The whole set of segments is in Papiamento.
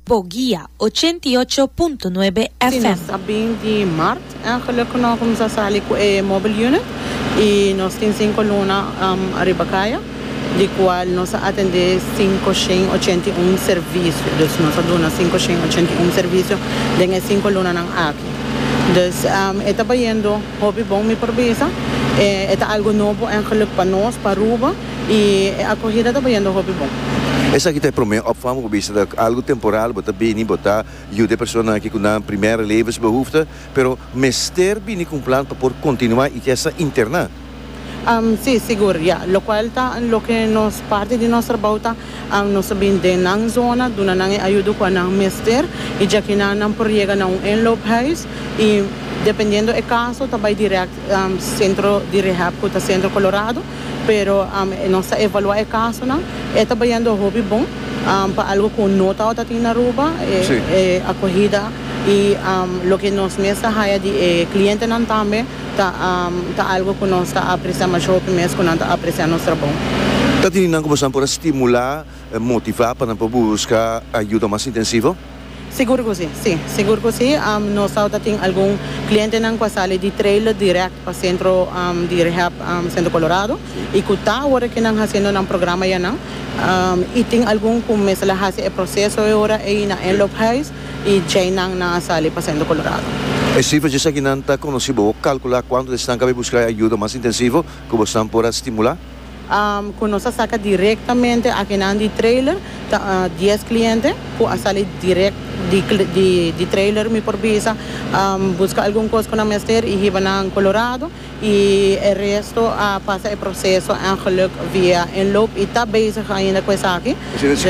Bo guia, ochenta i ocho punto nuebe Si nos FM. ta bin di Mart en geluk ku no kuminsá sali ku e mobile unit i nos tin sinku luna ariba kaya di kual nos a atendé sinku shen ochenta i un servisio. Dus nos a duna sinku shen ochenta i un servisio den e sinku lunanan aki. Dus e ta bayendo hopi bon mi por bisa. E ta algu nobo en geluk pa nos pa Aruba. I e akohida ta bayendo hopi bon. Esaki ta e promé opvang bo bisa ta algu temporal, bo ta bini, bo ta yuda e persona aki ku nan primer levensbehoefte, pero mester bini ku un plan pa por kontinuá i ke sa interná. Sí, sigur, ya. Lokual ta loke nos parti di nos trabou ta nos ta bin den nan zona, duna nan e ayudo kua nan mester, i djakinan nan por yega na un inloophuis i dependiendo e kaso ta bai dirèkt. Centro di Rehab cu ta Centro Colorado, pero nos ta evalua e casonan. E ta bayando hopi bon pa algo cu no tawata tin na Aruba, e acogida y loke nos mes ta haya di e clientenan tambe ta algo cu nos ta aprecia masho hopi mes cu nan ta aprecia nos trabou. Ta tin di nan cu boso nan por a stimula. Motivá pa nan por busca ayuda mas intensivo? Sigur cu si, si. Sigur cu si. Nos awor ta tin algun clientenan cu a sali di trailer direct pa centro di rehab Centro Colorado y cu ta awor aki nan haciendo nan programa ya nan. Y tin algun cu mester la haci e proceso e ora ey na Anloop Huis y djey nan nan a sali pa Centro Colorado. E cifracias aki nan ta conoci. Bo calcula cuantu di esnan cabí busca e ayuda mas intensivo cu bosnan por a stimula? Ku nos a saka direktamente akinan di trailer ta dies kliente ku a sali direkt di trailer mi por bisa buska algun kos ku nan mester i hiba nan Colorado i e resto a pasa e proseso engeluk via inloop i ta bezig ainda ku esaki dus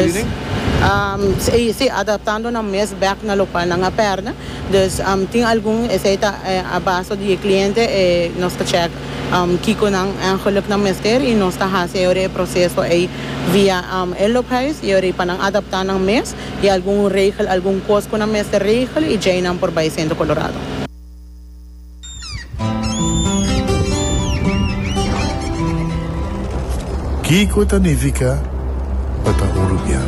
si adaptando nan mes bek na lokual nan a pèrdè dus tin algun esei ta a baso di e kliente nos ta chèk. Kiko nan eigenlijk nan mester y nos ta haci ayora e proceso ey via Inloophuis y ayora pa nan adapta nan mes y algun regel algun cos cu nan mester regel y djey nan por bay Centro Colorado. Kiko ta nifica pa ta un rubian?